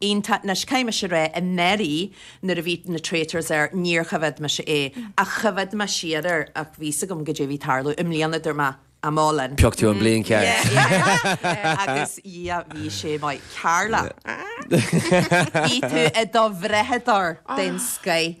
Iontach anois, caithfidh mise a rá i ndáiríre nuair a bhí na Traitors air, níor choimhead mise é, ach choimhead mé siar air, ach bhí a fhios agam caidé a bhí ag tarlú. I mbliana dúirt mé, I'm all in. Phioc tú an bhliain cheart. Yeah, agus yeah, bhí sé maith. Carla, bhí tú i do bhrathadóir den scoth.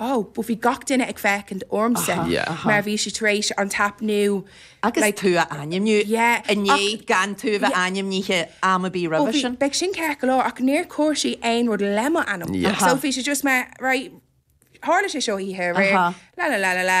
Ó, but bhí gach duine ag féachaint ormsa mar bhí sé tar éis happenáil. Agus tú a ainmniú i ndiaidh gan tú a bheith ainmnithe am ar bith roimhe sin. Ó, bhí sin ceart go leor ach níor chuir sí aon rud le mo ainm. So bhí sé just mar, right, tharla sé seo oíche aréir, la la la la la,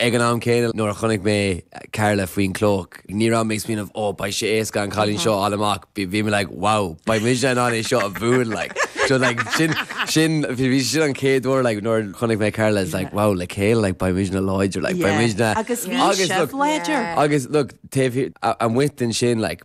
Ag an am céanna, nuair a chonaic mé Carla faoin gclóic, ní raibh mé ag smaoineamh, 'Ó, beidh sé éasca an cailín seo a fháil amach', bhí mé, like, 'Wow, beidh muidne in ann é seo a bhualadh', like. So, like, sin, sin, bhí, sin an chéad uair, like, nuair a chonaic mé Carla, it's like, 'Wow, le chéile, like, beidh muidne láidir, like, beidh Yeah, muidne'. agus bhí sibh láidir. Agus, look, taobh thiar, amuigh ansin, like,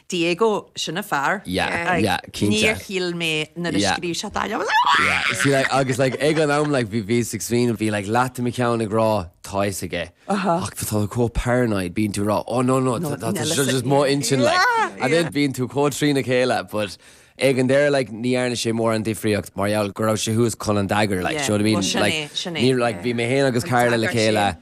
Diego, sin an fear. Yeah, Like, yeah, cinnte. níor shíl mé nuair a Yeah. scríobh sé dá leabhar, like, ah! Yeah, see, like, agus, like, ag an am, like, bhí- bhí ag smaoineamh, bhí, like, leath de mo cheann ag rá, tá fhios aige. Ach tá tú chomh paranoid, bíonn tú ag rá, oh, no, no, No, tá- tá- Nella tá- sa- just mo intinn, like. Yeah, And then yeah. bíonn tú chomh trína chéile, but ag an deireadh, like, ní dhearna sé mórán difríocht mar gheall go raibh sé suas chun an dagger, like, Yeah, do you know what I mean? well, sin Like, é, sin é, ní- like, yeah. bhí mé fhéin agus An Carla le dagger chéile, sin.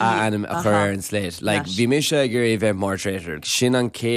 a ainm a chur ar an slate. Like, bhí mise ag iarraidh a bheith i mo thraitor. Sin an chéad.